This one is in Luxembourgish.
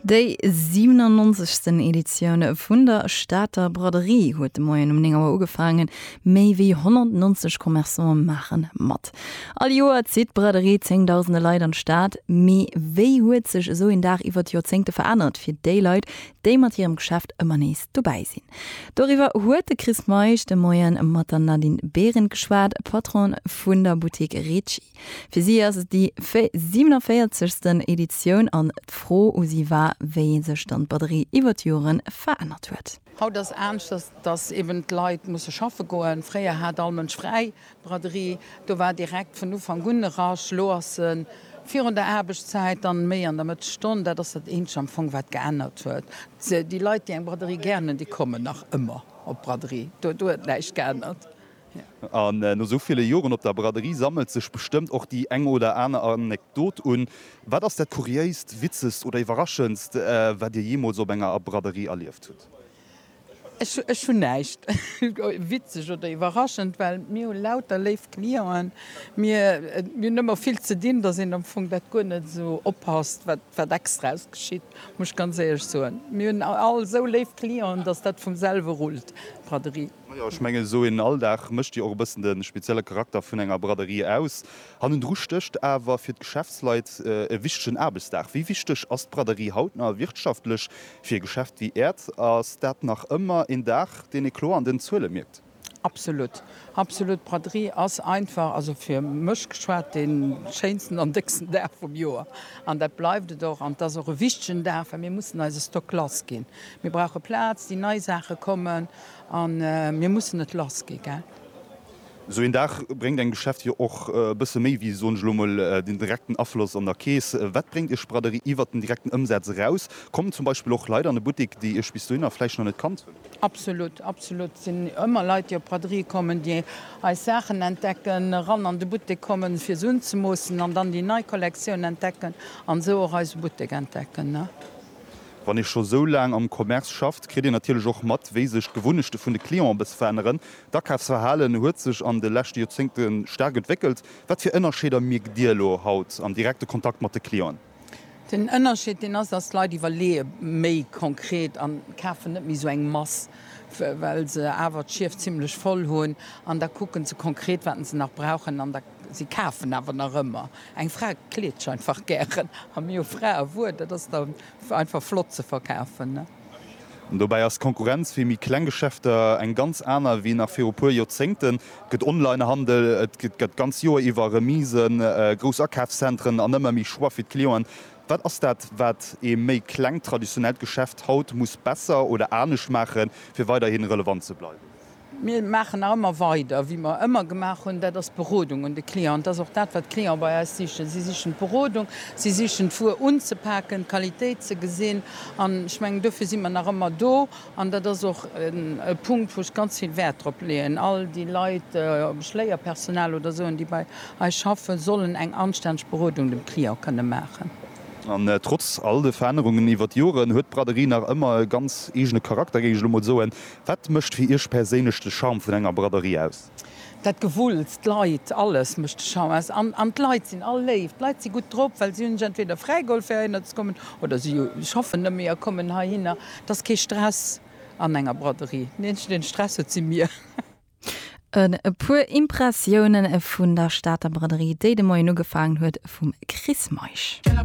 Déi 97. Editioun vun der Stater Braderie huet de Moien um 9 Auer ugefaangen. Méi wéi 190 Commerçante maache mat. All Joer zitt d'Braderie zéngdausende Leit an d'Stad. Mee wéi huet sech esou een Dag iwwer d'Joerzéngte verännert fir déi Leit, déi mat hirem Geschäft ëmmer nees dobäi sinn? Doriwwer huet de Chris Meisch de Moien mat der Nadine Behrendt geschwat, Patronne vun der Buttek Ricci. Fir si ass et déi 47. Editioun an d'Fro u si war, wéi sech dann d'Batterie iwwer d'Jore verännert huet. Haut ass aneschters, dass eben d'Leit musse schaffe goen. Fréier hat all Mënsch fräi. D'Braderie, do war direkt vun Ufank un e Rush. Elo ass se virun der Aarbechtszäit, dann méi an der Mëttesstonn. Dat ass dat eenzegt am Fong, wat geännert huet. Déi Leit, déi eng Braderie gären hunn, déi kommen nach ëmmer op d'Braderie. Do huet näischt geännert. An no esou ville Joren op der Braderie sammelt sech bestëmmt och déi eng oder aner Anekdot un. Wat ass dat Kuriéist, Witzegst oder Iwwerraschendst, wat Dir jeemools op enger Braderie erlieft hutt? Ech hunn näischt witzeg oder iwwerraschend, well mir hu lauter léif Clienten. Mir hunn ëmmer vill ze dinn, dass een am Fong dat guer net esou oppasst, wat extraes geschitt, muss ech ganz éierlech soen. Mir hunn all esou léif Clienten, dass dat vum selwe rullt, d'Braderie. Majo, ech mengen esou een Alldag mécht jo och e bëssen de spezielle Charakter vun enger Braderie aus. Hannendru stécht awer fir d'Geschäftsleit e wichtegen Aarbechtsdag. Wéi wichteg ass d'Braderie haut nach wirtschaftlech fir e Geschäft wéi Äert? Ass dat nach ëmmer een Dag, deen ee kloer an den Zuele mierkt? Absolut, absolut. D'Braderie ass einfach, also fir mech geschwat, dee schéinsten an décksten Dag vum Joer. An dat bleift et och. An et ass och e wichtegen Dag, well mir mussen eise Stock lassginn. Mir brauche Plaz, déi nei Saache kommen. A mir mussen et lass gi, gell? Esou een Dag bréngt engem Geschäft jo och e bësse méi wéi, soen ech elo emol, den direkten Afloss an der Keess. Wat bréngt Iech d'Braderie iwwert den direkten Ëmsaz eraus? Kommen zum Beispill och Leit an e Buttek, déi Iech bis dohinner vläicht nach net kannt hunn? Absolut, absolut. Et sinn ëmmer Leit, déi op d'Braderie kommen, déi eis Saachen entdecken, eran an de Buttek kommen, fir se unzemoossen an dann déi nei Kollektioun entdecken an esou och eise Buttek entdecken. Wann ee scho sou laang am Commerce schafft, kritt een natierlech och mat, wéi sech d'Gewunnechte vun de Clienten e bësse veränneren. D'Akafsverhalen huet sech an de leschte Joerzéngte staark entwéckelt. Wat fir Ënnerscheeder mierkt Dir elo haut am direkte Kontakt mat de Clienten? Den Ënnerscheed deen ass, dass d'Leit iwwerleeë méi konkret an kafen net méi sou eng Mass, well se awer d'Schief zimmlech voll hunn, an da kucken se konkret, wat se nach brauchen. Si kafen awer nach ëmmer. Eng Fra kleet sech einfach gären. A mir hu Fraewuer, dat ass da einfach flott ze verkafen, ne? An dobäi ass d'Konkurrenz fir méi kleng Geschäfter eng ganz aner wéi nach viru puer Joerzéngten. Et gëtt Onlinehandel, et gëtt d'ganz Joer iwwer Remisen, grouss Akafszentren an ëmmer méi Choix fir d'Clienten. Wat ass dat, wat ee méi klengt traditionellt Geschäft haut muss besser oder anescht maachen, fir weiderhi relevant ze bleiwen? Mir maachen nach ëmmer weider, wéi mer ëmmer gemaach hunn, dat ass d'Berodung un de Client. Dat ass och dat, wat d'Clienten bei eis sichen. Si sichen d'Berodung, si sichen d'Wuer unzepaken, d'Qualitéit ze gesinn. An ech mengen, dofir si mer nach ëmmer do. An dat ass och e Punkt, wou ech ganz vill Wäert drop leeën, all déi Leit, ob ech Léierpersonal oder esou hunn, déi bei eis schaffen, sollen eng anstänneg Berodung dem Client kënne maachen. An trotz all de Verännerungen iwwer d'Joren huet d'Braderie nach ëmmer e ganz eegene Charakter, géing ech elo mol soen. Wat mécht fir Iech perséinlech de Charme vun enger Braderie aus? Dat Gewulls, d'Leit, alles mécht de Charme aus. An d'Leit sinn all léif. D'Leit si gutt drop, well si hunn sech entweder fräigeholl fir heihinner ze kommen, oder si schaffen nëmme a kommen heihinner. Et ass kee Stress an enger Braderie. Den eenzegen, deen Stress huet, si mir. E puer Impressioune vun der Stater Braderie, déi de Moien ugefaangen huet, vum Chris Meisch.